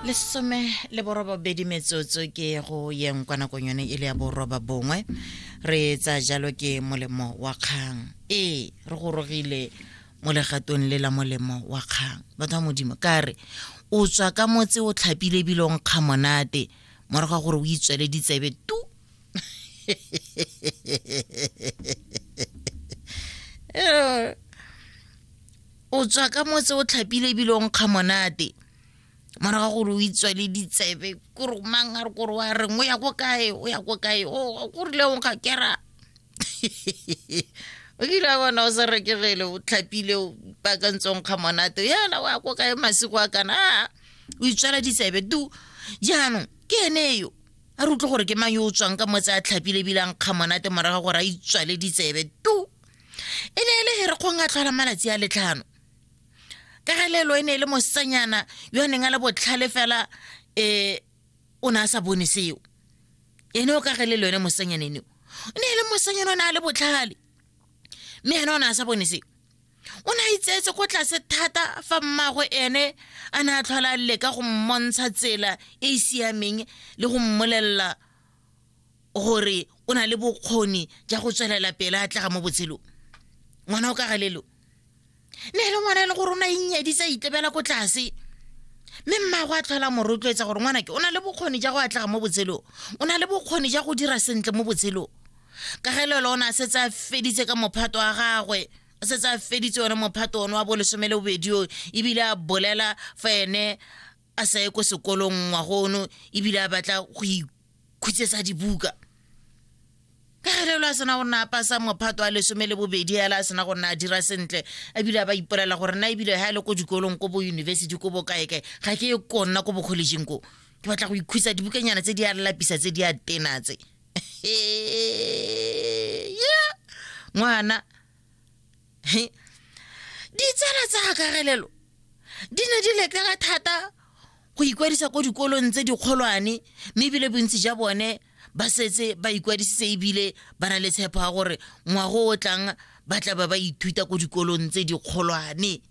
lesome le borobabedi metsotso ke go yeng kwa nakong yone e le ya boroba bongwe re tsa jalo ke molemo wa kgang ee re gorogile mo legatong le la molemo wa kgang batho ba modimo ka re o tswa ka motse o tlhapile ebile o nkga monate morago ga gore o itswele ditsebe tu Eh, o tswa ka motse o tlhapile ebile o nkga monate morago ga gore o itswa le ditsebe kore mang a re kore wa reng o ya ko kae o ya ko kae o korile o nkga kera o kile a bona o sa rekegele o tlhapile o pakantse o nkga monate yana o ya ko kae masiko a kana a o itswala ditsebe tu jaanong ke ene yo a re utlwe gore ke mang yo o tswang ka motse a tlhapile ebile a nkga monate morago gore a itswale ditsebe tu e ne e le herekgong a tlhola malatsi a letlhano ka ga lelo e ne e le mosetsanyana yo a neng a le botlhale fela um o ne a sa bone seo ene o ka ge le lone mosetsanyana eneo o ne e le mosetsanyana o ne a le botlhale mme ene o ne a sa bone seo o ne a itseetse ko tlase thata fa mmago ene a ne a tlhola leka go mmontsha tsela e e siameng le go mmolelela gore o na le bokgoni ja go tswelela pele a tlega mo botshelong ngwana o ka galelo ne le ngwana e le gore o na inyaditse a itlebela ko tlase mme mmago a tlhola mo rotloetsa gore ngwana ke o na le bokgoni ja go atlega mo botshelong o na le bokgoni ja go dira sentle mo botshelong ka gelelo o ne a setse a feditse ka mophato wa gagwe o setse a feditse one mophato one wa bolesome le bobedi o ebile a bolela fa ene a sa ye ko sekolong ngwago ono ebile a batla go ikhutsetsa dibuka ka galelo a sena go nna a pasa mophato a lesome le bobedi yala a sena go nna a dira sentle ebile a ba ipolela gore nna ebile ga e le ko dikolong ko bo university ko bo kaekae ga ke ye konna ko bokgolegeng ko ke batla go ikhutsa dibukanyana tse di a lapisa tse di a tena tse ngwana ditsala tsa akarelelo di ne di lekega thata go ikwadisa ko dikolong tse dikgolwane mme ebile bontsi ja bone ba setse ba ikwadisitse ebile ba na le tshepo ya gore ngwago o tlang ba tla ba ba ithuta ko dikolong tse dikgolwane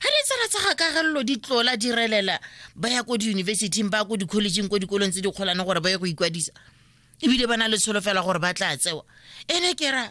ga ditsala tsa gakagelelo di tlola di relela ba ya ko diyunibesithing ba ya ko dikholejeng ko dikolong tse dikgolwane gore ba ye go ikwadisa ebile ba na le tsholofela gore ba tla tsewa ene ke ra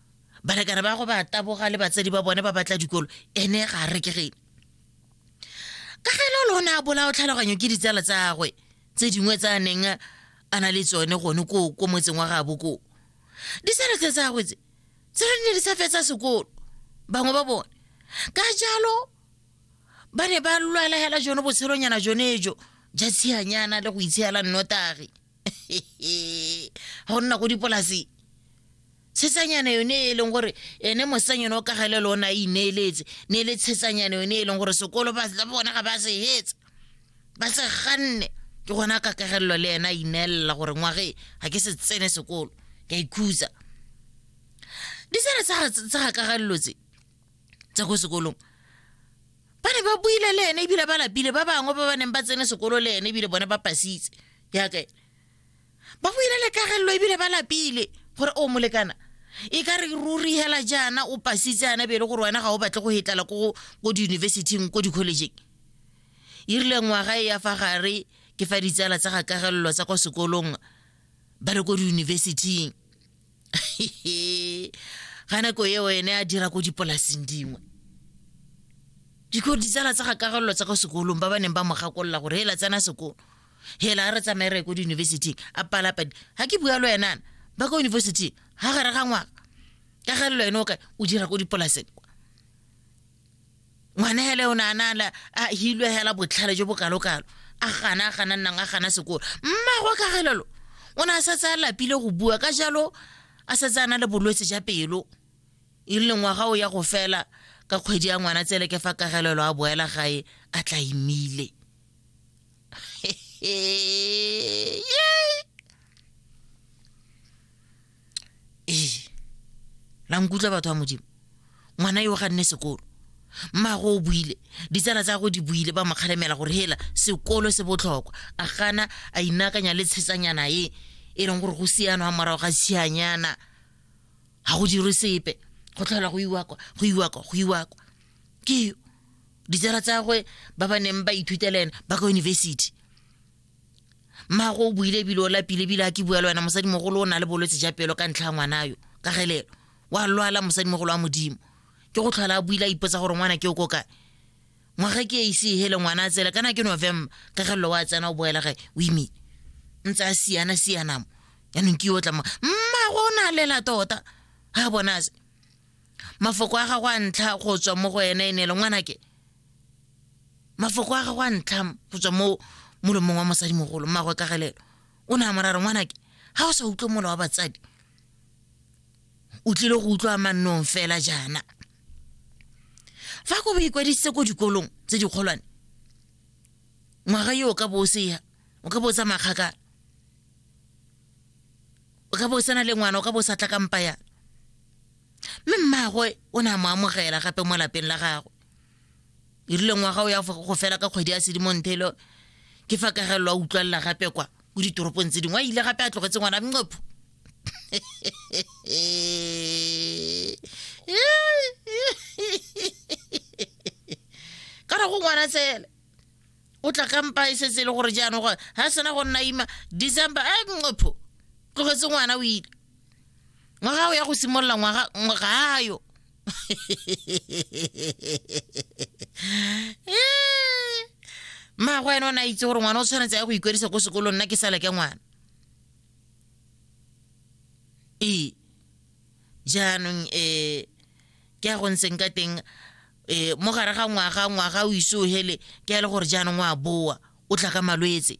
balekane ba go ba taboga le batsadi ba bone ba batla dikolo ene ga re ke gene ka ge lolo o ne a bolao tlhaloganyo ke ditsala tsagwe tse dingwe tsa neng a na le tsone gone ko ko motseng wa gabo koo ditsala tse tsagwe tse tse re ne di sa fetsa sekolo bangwe ba bone ka jalo ba ne ba lwala hela jone botshelonyana jone jo ja tshianyana le go itshela nnotagi go nna go dipolaseng tshetsanyana yone e leng gore ene mosetsang yone o kagele le one a ineeletse ne e le tshetsanyana yone e leng gore sekolo ba bona ga ba se hetsa ba se ganne ke gona ka kagelelo le ena a ineelela gore ngwage ga ke se tsene sekolo ka ikhutsa disere tsa ga kagelelo tse tsa ko sekolong ba ne ba buile le ene ebile ba lapile ba bangwe ba ba neng ba tsene sekolo le ene ebile bone ba pasitse yaka ba buile le kagelelo ebile ba lapile gore o molekana e ka re ruri hela jaana o pasitse ana bele gore wena ga o batle go hetlala ko ko diyunibesiting ko dikholejeng e rile ngwaga e ya fa gare ke fa ditsala tsa gakagelelo tsa kwa sekolong ba le ko diyunibesiting ga nako eo ene a dira ko dipolaseng dingwe diko ditsala tsa gakagelelo tsa kwa sekolong ba ba neng ba mo gakolola gore hela tsena sekolo hela a re tsamaye re ko diyunibesiting a palapadi ga ke bua lo enana ba ko yunibesiting ga gare ga ngwaka ka ga lelo ene o ka o dira ko dipolaseng ngwana hele o naanala a hilwe hela botlhale jo bokalokalo a gana a gana nnang a gana sekolo mmago ka gelelo o ne a setse a lapile go bua ka jalo a setse a na le bolwetse ja pelo e le ngwaga o ya go fela ka kgwedi ya ngwana tsele ke fa kagelelo a boela gae a tla imile ee la nkutlwa batho ba modimo ngwana yo ga nne sekolo mmago o buile ditsala tsa go di buile ba mokgalemela gore hela sekolo se botlhokwa a gana a inakanya le tshetsanyana e e leng gore go siano ga morago ga sianyana ga go dirwe sepe go tlhola go iwakwa go iwakwa go iwakwa ke ditsala tsagwe ba ba neng ba ithutela ena ba ka university mmago o buile ebile o lapile ebile a ke bua le wena mosadimogolo o na le bolwetse ja pelo ka ntlha ya ngwana yo ka gelelo wa lwala mosadimogolo wa modimo ke go tlhola a buile a ipotsa gore ngwana ke o ko kae ngwaga ke e ise e hele ngwana a tsela kana ke november ka gelelo wa tsena o boela gae o imile ntse a siana sianamo yaanong ke yo o tlamang mmago o na lela tota ga bonase mafoko a gago a ntlha go tswa mo go ene e ne le ngwanake mafoko a gago a ntlha go tswa mo molomong wa mosadimogolo mmagwe ka galelo o ne a morare ngwanake ga o sa utlwe mola wa batsadi o tlile go utlwa mannong fela jaana fa ko bo ikwadisitse ko dikolong tse dikgolwane ngwaga yo o ka bo o seya o ka bo o tsa makgakala o ka bo o sena le ngwana o ka bo o sa tla kampa yana mme mmagwe o ne a mo amogela gape mo lapeng la gagwe e rile ngwaga o ya go fela ka kgwedi ya sedimontelo ke fa kagelelo a utlwalela gape kwa ko ditoropong tse dingwe a ile gape a tlogetse ngwana mnqopho ka ra go ngwana tsele o tla kampa e setse e le gore jaanong gore ga sena go nna ima december a eh, nqopho tlogetse ngwana o ile ngwaga o ya go simolola ngwaga gayo mmago ene o ne a itse gore ngwana o tshwanetse ya go ikwadisa ko sekolong nna ke sale ke ngwana ee jaanong um ke ya go ntseng ka teng e mo gare ga ngwaga ngwaga o ise o hele ke a le gore jaanong o a boa o tla ka malwetse